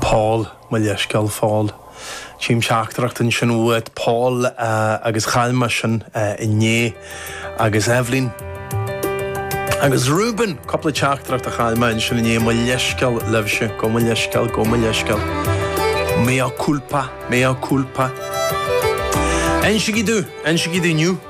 Paul, Mo leithscéal, Phaul. Tchím teachtaireacht ansin uait, Paul, agus chaill mé sin inné. Agus Eibhlín. Agus Reuben! Cúpla teachtaireacht a chaill mé ansin inné, mo leithscéal libhse, gabh mo leithscéal, gabh mo leithscéal. Mea culpa, mea culpa. I'm so guilty, I'm so guilty inniu.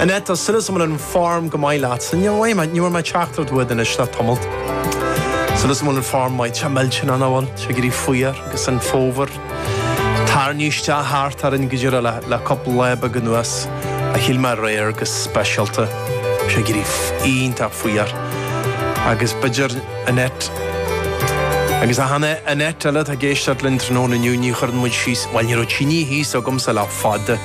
Annette, tá súil is agam go bhfuil an form go maith leat. Ní bhfuair mé, ní bhfuair mé teachtaireacht uait anois le tamalt. Súil is agam go bhfuil an form maith, tá mé ag sílstean go bhfuil sé ag éirí fuar agus an fómhar ag tarraingt isteach thart orainn go deireadh le, le cúpla lá beag anuas. Ach shíl mé aréir go speisialta go raibh sé ag éirí iontach fuar. Agus b'fhéidir, Annette, agus achan Annette eile atá ag éisteacht linn tráthnóna inniu, ní chuireann muid síos, bhuel ní raibh tinidh thíos agamsa le fada.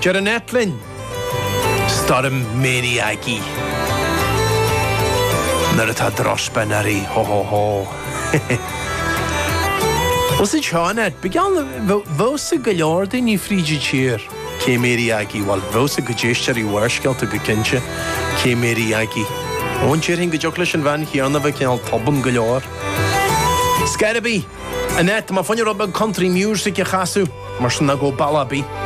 Deir Annette linn, Stoirm Mary Aggie. Nuair atá drochspion uirthi, ho ho ho. Ós id seo Annette, bíodh geall nach bhfuil a fhios ag go leor daoine fríd an tír cé Mary Aggie, bhuel, bheadh a fhios ag cuid éisteoirí Bharrscéalta go cinnte, cé Mary Aggie. Ó, déarfainn go dtiocfadh leis an bhean chéanna a bheith cineál tobann go leor. Scor ar bith, Annette, tá mé fá choinne rud beag country music a chasadh, mar sin ná gabh ball ar bith.